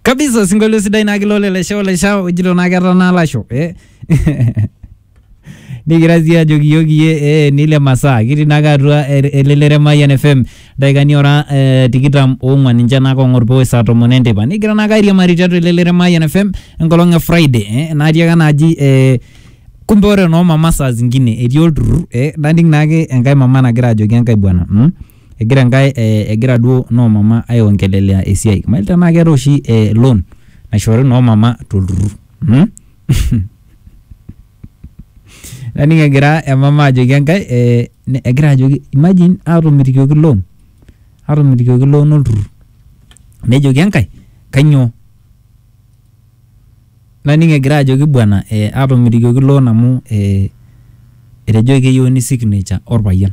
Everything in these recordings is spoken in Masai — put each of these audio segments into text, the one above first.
kabisa osinkolio sidai naa kilo lelesha olesha ojito naa ketaa naa lasho eh? nikira sii ajoki iyiok iyie eh, nile masaa kitii naake atua el- elelero e Mayian FM daikani ora eh, tikitam oong'wan ninche naake ong'or pooe saa tomon enteipa nikigira naake airiamari tiatua elelero e Mayian FM enkolong e Friday eh, natii ake naaji eh, kumbe ore noo mama saa zingine etii olturrur eh, naning naake enkae mama nagira ajoki enkae bwana mm? egira enkae eh, egira duo noo mama aiongelelea esiai mail tenaa keetae oshi eh, loan naishoori noo mama tolturrur mm? naning egira emama ajoki enkae eh, ne- egira ajoki imagine atomitikioki loan atomitikioki loan olturrur nejoki enkae kanyoo Naning egira ajoki bwana ee atomitikioki loan amu ee etejoki keyieuni signature orpayian.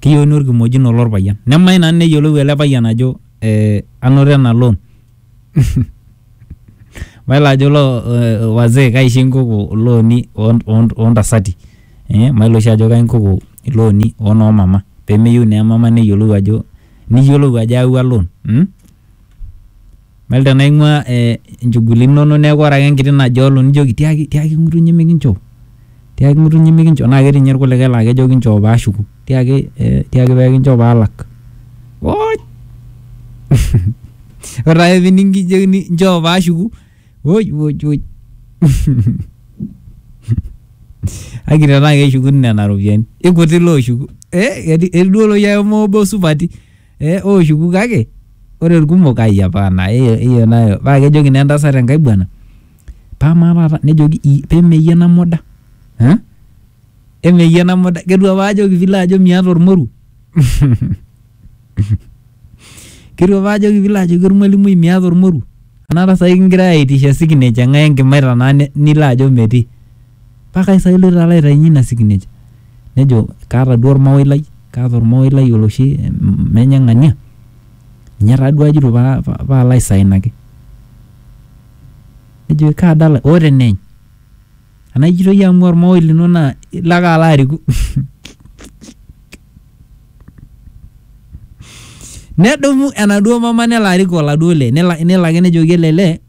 Keyieuni orkimojino lorpayian. Nemayieu nanu neyiolou ele payian ajo ee anoto ena loan. Mayiolo ajo loo wazee kaisho inkoko ilooni oo ntasati. Mayiolo oshi ajo kai inkoko ilooni oo noo mama. Pemeyieu naa emama neyiolou ajo niyiolou ajo ayawua loan. Mayiolo tenaa ing'ua inchugulini inonok neeku ore ake enkiti najolo nijoki tiaki tiaki ng'utunyi mikinchoo, tiaki ng'utunyi mikinchoo naa ketii nye irkulikai laa kejo kinchoo paashuku, tiaki ee tiaki pee kinchoo paalak. Wooch! Ore taake pining' kijokini nchoo paashuku woj woj woj. Kake tenaa keshukuni nena ropiani ikuti looshuku ee eti duo iloshi ake moobo supati. eh, ooshuku kake ore irkumok ai hapana hiyo hiyo nayo paa kejoki naa entasat enkae bwana paa maa taata nejoki "Ii, pemeyie ena muda eh? emeyie ena muda ketua apa ajoki pilo ajo miata ormoruo ketua apa ajoki pilo ajoki ormwalimui miata ormoruo anaata sai kingirae aitisha signature ng'ae enkimaita naa ni- nilo ajo metii Pakae sa iloito alo aitainye ina sikinej? Nejo, Kaata duo olmawoi lai, kaata olmawoi lai oloshi menye ng'ania, ninye taa duo ajito paalo aisainaki. Nejoki, Kaa dala? Oo teneeny. Anaa ijito iyie amu olmawoi lino naa ilo ake alo ariku. Nedumu enaduo mama nelo arik oladuo lee, nelo ake nejoki ele lee.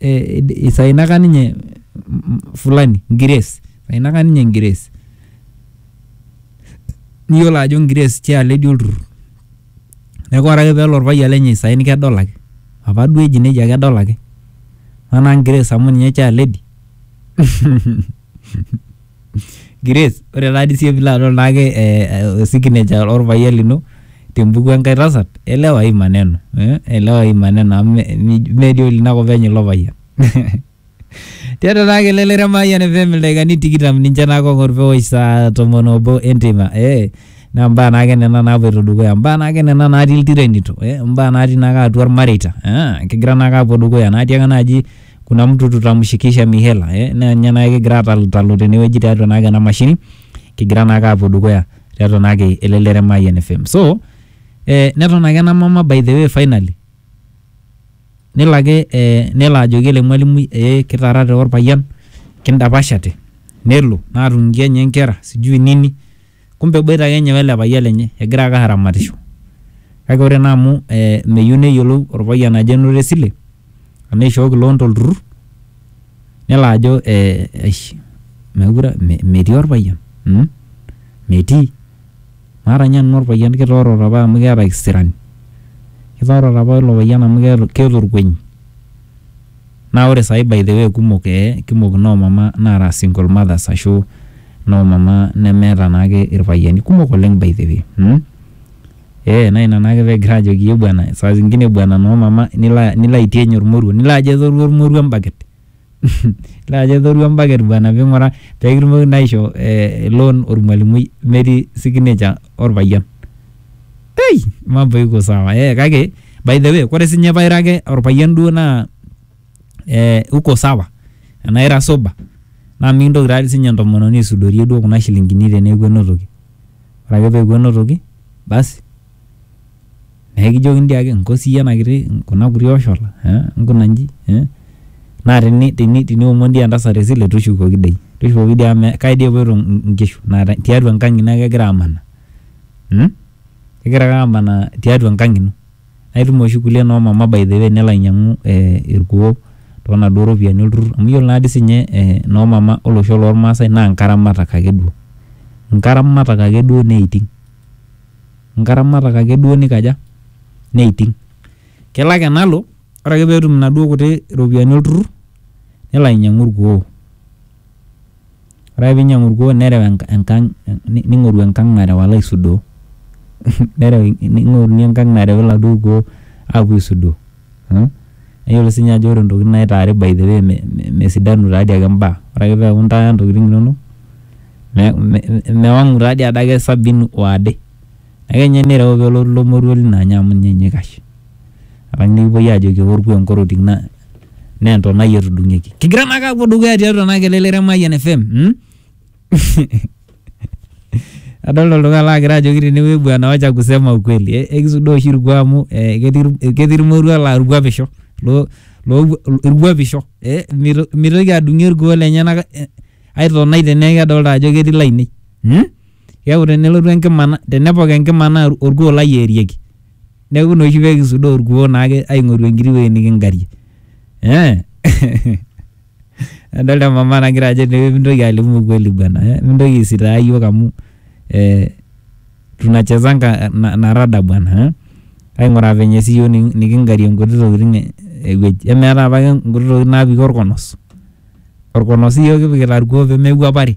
eh, isainaka ninye mm, fulani ngires isainaka ninye ngires niyiolo ajo ngires tialo etii olturrur neeku ore ake peelo orpayian lenye isain kedol ake apa duo eji nejia kedol ake manaa ngires amu ninye chair lady Grace, ore taa dii siiyie pilo adol naake eh, eh, signature orpayian lino tembuku enkae tasat, elewa hii maneno eh, elewa hii maneno amu me- mi- mee dii olinakop enye ilo payian. Tiatua naa kelelere Mayian FM ildaikani tikitam ninche naake ong'or pewosh saa tomon obo enteipa eh, naa mbaa naake nena napuoito dukuya, mbaa naake nena natii iltirenito eh, mbaa natii naake atua ilmareita eh, kigira naake apuo dukuya natii ake naaji kuna mtu tutamshikisha mihela eh, naa ninye naake kigira atalutalo tenewueji tiatua naake ena mashini kigira naake aapuo dukuya tiatua naake elelero e Mayian FM so eh, neton ake ena mama by the way finally nelo ake eh, nelo ajoki ele mwalimui eh, kitaarate orpayian kindapashate nelo naatung'ie enye nkera sijui nini Kumbe eboita ake ninye wele payian lenye egira ake aramatisho. Kake ore naa amu meyieu neyiolou olpayian ajo enoto esile anaa eishooki loan to lturrur nelo ajo eish meekure metii olpayian mmh metii. Maata ninye nanu olpayian kitoorote apa amu kiata kisirani. Kitoorote apa oilo payian amu keeta olkueny. Naa ore saai by the way kumok ee kumok noo mama naara single mothers ashu noo mama nemeeta naake irpayiani kumok oleng by the way mmh. Ee naa ina naake peegira aajoki iyie bwana saa zingine bwana noo mama nilo nilo aitieny ormoruo nilo ajo etoruo ormoruo embaket mmh nilo ajo etoruo embaket bwana piing'uraa peekitumoki naa aishoo loan ormwalimui metii signature orpayian. Ei, mambo iko sawa. Eh, kake by the way, kore sinye paira ake orpayian duo naa eh, uko sawa. Enaa ira sober. Naa mikintoki taa sinye entomononi aisudorie duo kuna shilingini teneeku enotoki. Ore ake peeku enotoki, basi naa ekijokini dii ake nko siyie ena kiti kuna kuti oshola eh, nkuna nji eh. Naa teni teni teniomon dii entasat esile tushukoki dei. Tushukoki dei amu kai dei epuoito nkishu naa tiatua enkang' ino ake egira amanaa. igira ake amanaa tiatua enkang ino naa itum oshi kulie noo mama by the way nelo ainyiang'u eh irkuo tonaduo ropiyiani olturrur amu yiolo naadii sinye eh noo mama olosho lormaasae naa inkaramatak akeduo inkaramatak akeduo neiting inkaramatak akeduo nikaja neiting kelo ake nalo ore ake peetum inaduo kuti ropiyiani olturrur nelo ainyiang'u irkuo. Ore ake peinyiang'u olkuoo nereu enkang neing'oru enkang nareu alo aisudoo nereu neing'oruni enkang nareu oladuo kuoo apuo aisudoo mmh neyiolo siininye ajo ore intokitin naitaari by the way mesidanu taa dii ake imbaa ore ake peeku intaaya intokitin inonok mewang'u taa dii adake sabini waade. Ake ninye nireu pee elotu ilo moruo lino anya amu ninye ninye oikash. Alang nikipuoi aajoki eorkua enkorotik naa entonai etudung'ieki. Kigira naake aapuo dukuya tiatua ena kelelero e Mayian FM. Adolita oltung'ani laagira ajoki tenewueji bwana wacha kusema ukweli. Ekisudoo oshi ilkuak amu ketii ilmoruak laa ilkuapisho. Ilkuapisho. Mitoki adung'ie ilkuoo lenyenak ai tonai teneeku kedolita ajo ketii lainei. keaku tenelotu enkima na- tenepok enkima naa or- orkuo lai eerieki neaku ina oshi pekisudaa orkuo naake aing'oru enkiti wuei niking'arie eh adolta emama nagira ajo tee mintoki alimu ukweli bwana eh mintoki aisitaa iyiok amu eh tunachezanga na na rada bwana eh aing'uraa venye sii iyiok niki- niking'arie nkuti tokitin eh ewueji emeetae apake nkuti tokitin napiki orkonos orkonos iyiok kipikita irkuo pemekuapari.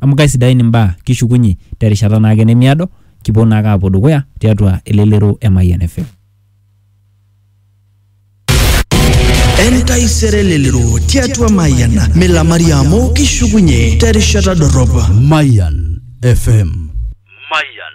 amu kaisidain imbaa kishukunye terishata naake nemiado kipuo naake apuo dukuya tiatua elelero e Mayian FM. Entaisere elelero tiatua Mayian milamari amu kishukunye terishata dorrop. Mayan FM. Mayan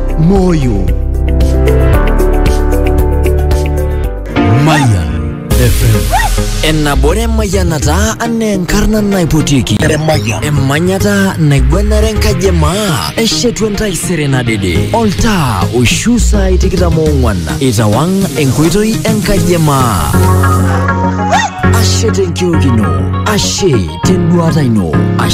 Moyo Maya FM Enabore mayanata ane enkarna naipotiki emanyata naigwanare enkaji e maa eshetu entaisere nadede oltaa oishu saai tikitam oong'wan itawang enkoitoi enkaji e maa ashe tenkiok ino ashe tenduata ino ashe